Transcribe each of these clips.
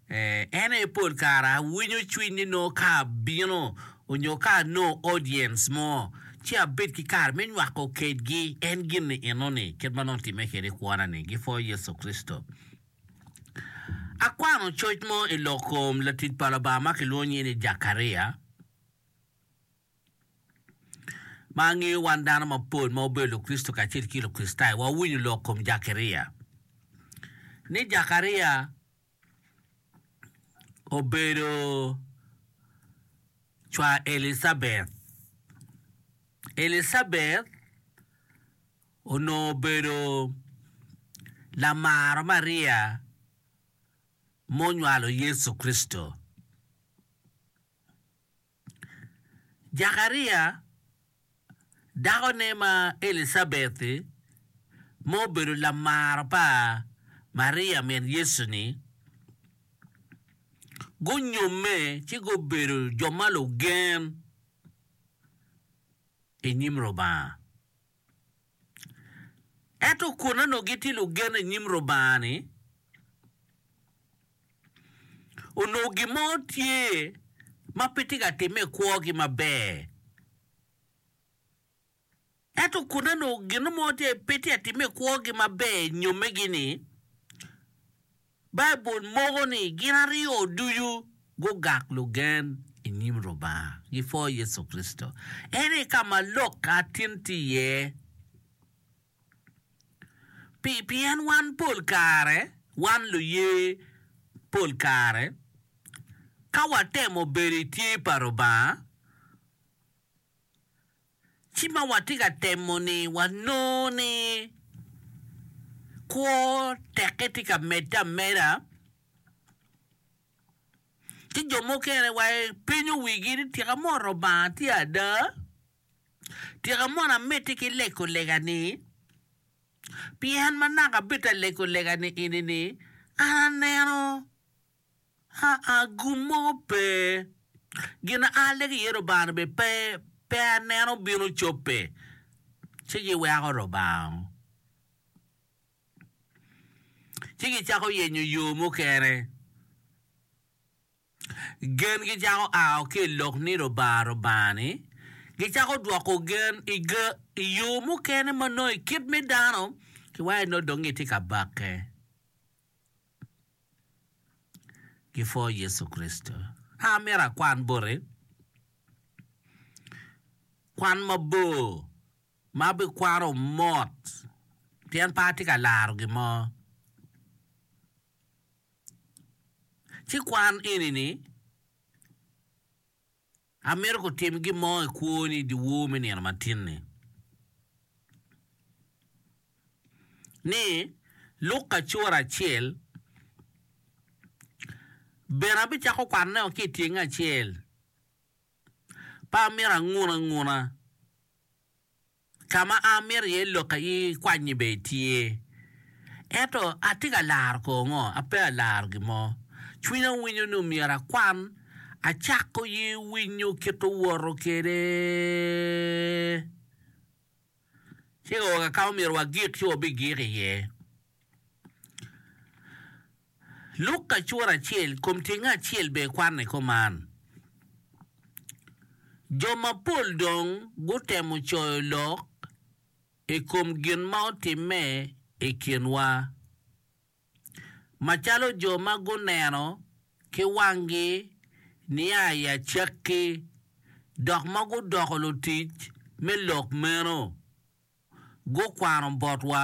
En aye pol kare awinyo cwiny ni nongo ka abino onyo ka anongo audience mo ci abed ki kare me nywako kedgi en gin-ni enoni, kit ma nongo timme kede i kwona-ni, gipwoyo Yecu Kricito. Akwano coc mo i lok kom latic pa Lubanga ma kilwongo nyinge ni Jakaria. Ma angeyo wan dano mapol ma wabedo Lukricito kacel ki Lukricitayo wawinyo lok kom Jakaria, ni Jakaria obedo cwar Elicabeth. Elicabeth onongo obedo lamaro Maria munywalo Yecu Kricito. Jakaria, dakone ma Elicabeti, ma obedo lamaro pa Maria min Yecu-ni, gunyomme ci gubedo jo ma lugen i nyim Lubanga. Ento kun onongo gitye lugen i nyim Lubanga-ni, onongo gin mo tye ma pe tye ka timme i kwogi maber. Ento kun onongo gin mo pe tye ka timme i kwogi maber i nyommegi-ni, Baibul moko ni gin aryo ducu gugak lugen i nyim Lubanga, gipwo Yecu Kricito. Eni ka ma lok atin tye iye. Pi, pien wan pol kare, wan luye, pol kare ka watemo bedo i tye pa Lubanga, Ci ma watye ka temo-ni, wanongo ni kwo teke tye ka medde ameda, ci jo mukene wa gipenyo wigi ni, 'Tika mot Lubanga tye ada? Tika mono amedde ki lekolega-ni? Pien ma naka abedde ka lekolega-ni eni-ni, an aneno. Aa, gum mo pe. Gin a alle ki iye Lubanga-ni bene pe, pe aneno bino cobbe. Ci giweko Lubanga, ci gicako yenyo yo mukene. Gengi cako ao ki i lok ni Lubanga, Lubanga-ni, gicako dwoko gen i ge, i yo mukene ma nongo i kit me dano, kiwayo ni nongo dong gitye ka bakke. ki pwo Yecu Kricito. Ka amito akwan boti kwan mabor ma abikwano mot pien pe atye ka laro gin mo, ci kwan eni ni. Amito kutim gin mo i kwoni i dyewor me nino matin-ni. Ni, luk kacura acel, bene abicako kwanone woko ki i tyenge acel. Pe amito angun anguna. Ka ma amito iye lok aye kwanyi bene tye. Ento atye ka laro kor ngo? Ape alaro gin mo. Cwinya winyo ni omyero akwan. Acako ye winyo kit owoto kwede. Ci ka oka ka ma omyero wagik ci wabigik iye. Luk kacura acel kom tyenge acel bene kwanno i kom man. Jo mapol dong gutemo coyo lok i kom gin ma otimme i kinwa. Macalo jo ma guneno ki wanggi nia i acakki dok ma gudoko lutic me lok meno, gukwano botwa.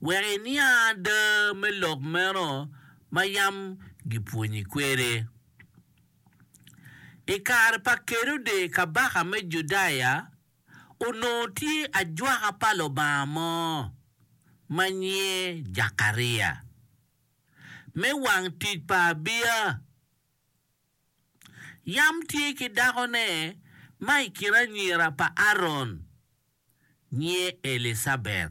wek iniang ada me lok meno ma yam gipwonyi kwede. I kare pa Kerode kabaka me Judaya, onongo tye ajwaka pa Lubanga mo ma nyinge Jakaria me wang tic pa Abia. Yam tye ki dakone ma i kin anyira pa Aron, nyinge Elicabet.